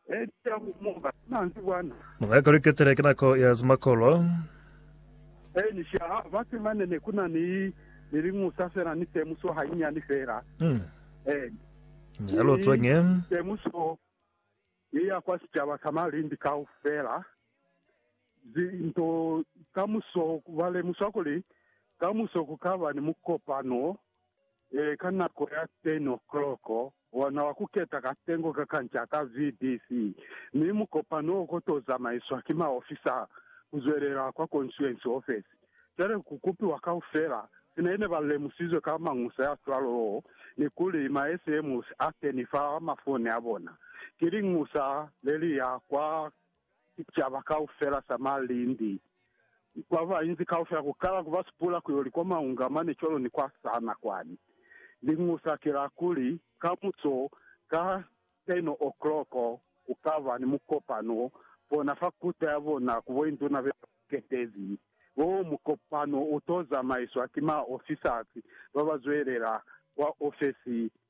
Eca ku muka manzi bwana. Mwa kaluketele ki nako ya zimakolo. E ni sha ha ba temane ne ku na ni ni liñusa fela ni temuso hanyinyani fela. E Ni lu tswenye. temuso ye ya kwa sicaba sa malindi kaufela. Zi nto kamuso ba lemusa kuli kamuso ku ka ba ni mukopano Ee, ka nako ya 10 o'clock, ona wa ku keta katengo ka kanca ka VDC, mi mukopano o ko to zamaiswa ki maofisa ku zwelela kwa konsuensi ofesi. Cwale ku kupiwa kaufela, sina ine ba lemusizwe ka mañusa ya cwalo oo, ni kuli ma SMS a keni fa mafone a bona, ki liñusa le li ya kwa. sicaba kaufela sa malindi, kwa bainzi kaufela, ku kala ku ba supula ku yo li kwa maunga mane cwalo ni kwa sana kwani. Liñusa ki la kuli, kamuso ka 10:00 ku ka ba ni mukopano bona fa kuta ya bona ku boinduna be ba ketezi. Wo mukopano u to zamaiswa ki maofisasi ba ba zwelela kwa ofesi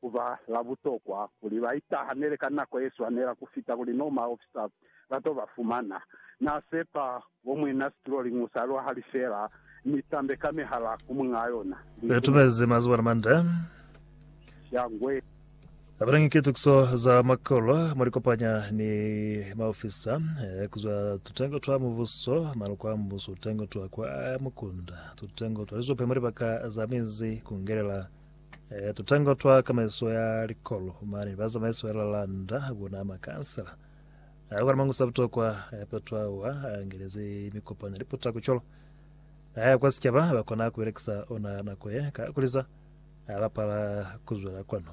ku ba la butokwa kuli ba itahanele ka nako ye swanela ku fita kuli no maofisa ba to ba fumana. Na sepa bo mwina situlo li musa lwa hali fela, mi tambe ka mihala ku muñaa yona. Li tumezi mazuba ni mande. Shangwe. Apelangi ki tukiso za makolo mwa li kopanya ni maofisa ku zwa tutengo twa mubuso, maloko a mbuso, tutengo twa kwa mukunda, tutengo twa lizope mwa libaka za mizi, ku ngelela E, tutango twa kamaiso ya likolo, mane ba zamaiso ya lalanda bona makansela a kwa mangusa butokwa ya petwa wa angeleze mikopano liputa kucholo aya kwa sichaba ba kona kubelekisa ona nako ye ka kuliza abapala kuzwela kwano